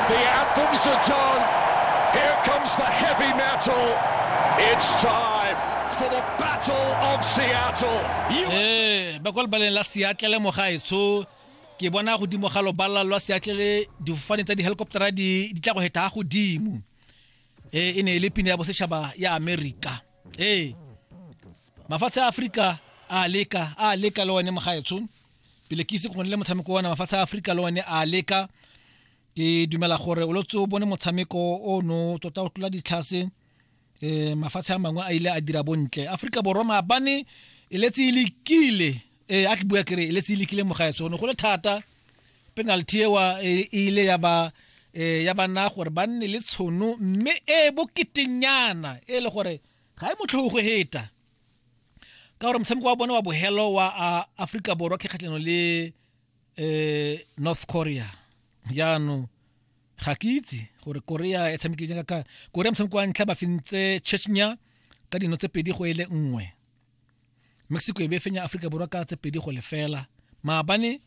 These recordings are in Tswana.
The anthems are done. Here comes the heavy metal. It's time for the Battle of Seattle. You ee ba kwa lebaleng la seatlele mogaetsho ke bona godimo ga lobala lwa seatlele difofane tsa di-helicoptera di di tla go heta ga godimo ee e ne e le pina ya bosetšhaba ya amerika ee mafatshe a aforika a leka a leka le one mogaetsho pele ke ise go le motshameko wa mafatshe a aforika le one a leka ke dumela gore o lotse o bone motshameko o no tota o tlola ditlhase um mafatshe a mangwe a ile a dira bontle aforika borwa maabane e letse e lekile um a ke bua kere e letse e lekile mogaetso one go le thata penalty ewa e ile ya ba um ya bana gore ba nne le tshono mme e boketenyana e le gore ga e motlhogo go heta ka gore motshameko wa bone wa bogelo wa aforika borwa ke kgatlhano le um north korea jaanong ga ke itse gore korea e tshamekile jang ka korea motshameko wa ntlha ba fentse chechnya ka dino tse pedi go e le nngwe mexico e be fenya aforika borwa ka tse pedi go lefela maabane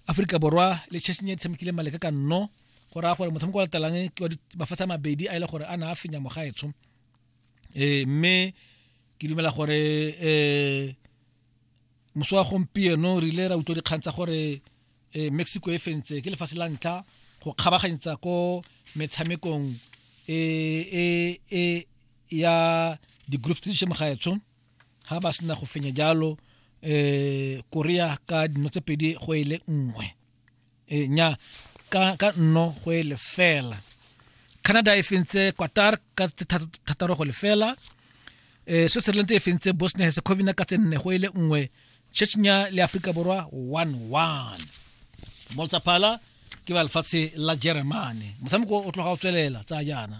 aforika borwa le chechnya e tshamekile maleka ka nno go raya gore motshameko wa latelang ke wa mafatshe a mabedi a e le gore a na a fenya mogaetsho eh mme ke dumela gore eh moso wa gompieno re ile ra utlwa dikgang tsa gore eh Mexico e fentse ke lefatshe la ntlha go kgabaganyetsa ko metshamekong e e e ya di groups tse di shemo ga etsho ha ba sena go fenya jalo eh Korea ka dino tse pedi go ile e nngwe e nya ka ka nno go e lefela canada e fentse qatar ka thataro go lefela um switzerland e fentse bosnia herzegovina ka tsenne go e le nngwe chechnya le aforika borwa one one moltsaphala ke ba lefatshe la jeremane motshameko o tloga o tswelela tsa jaana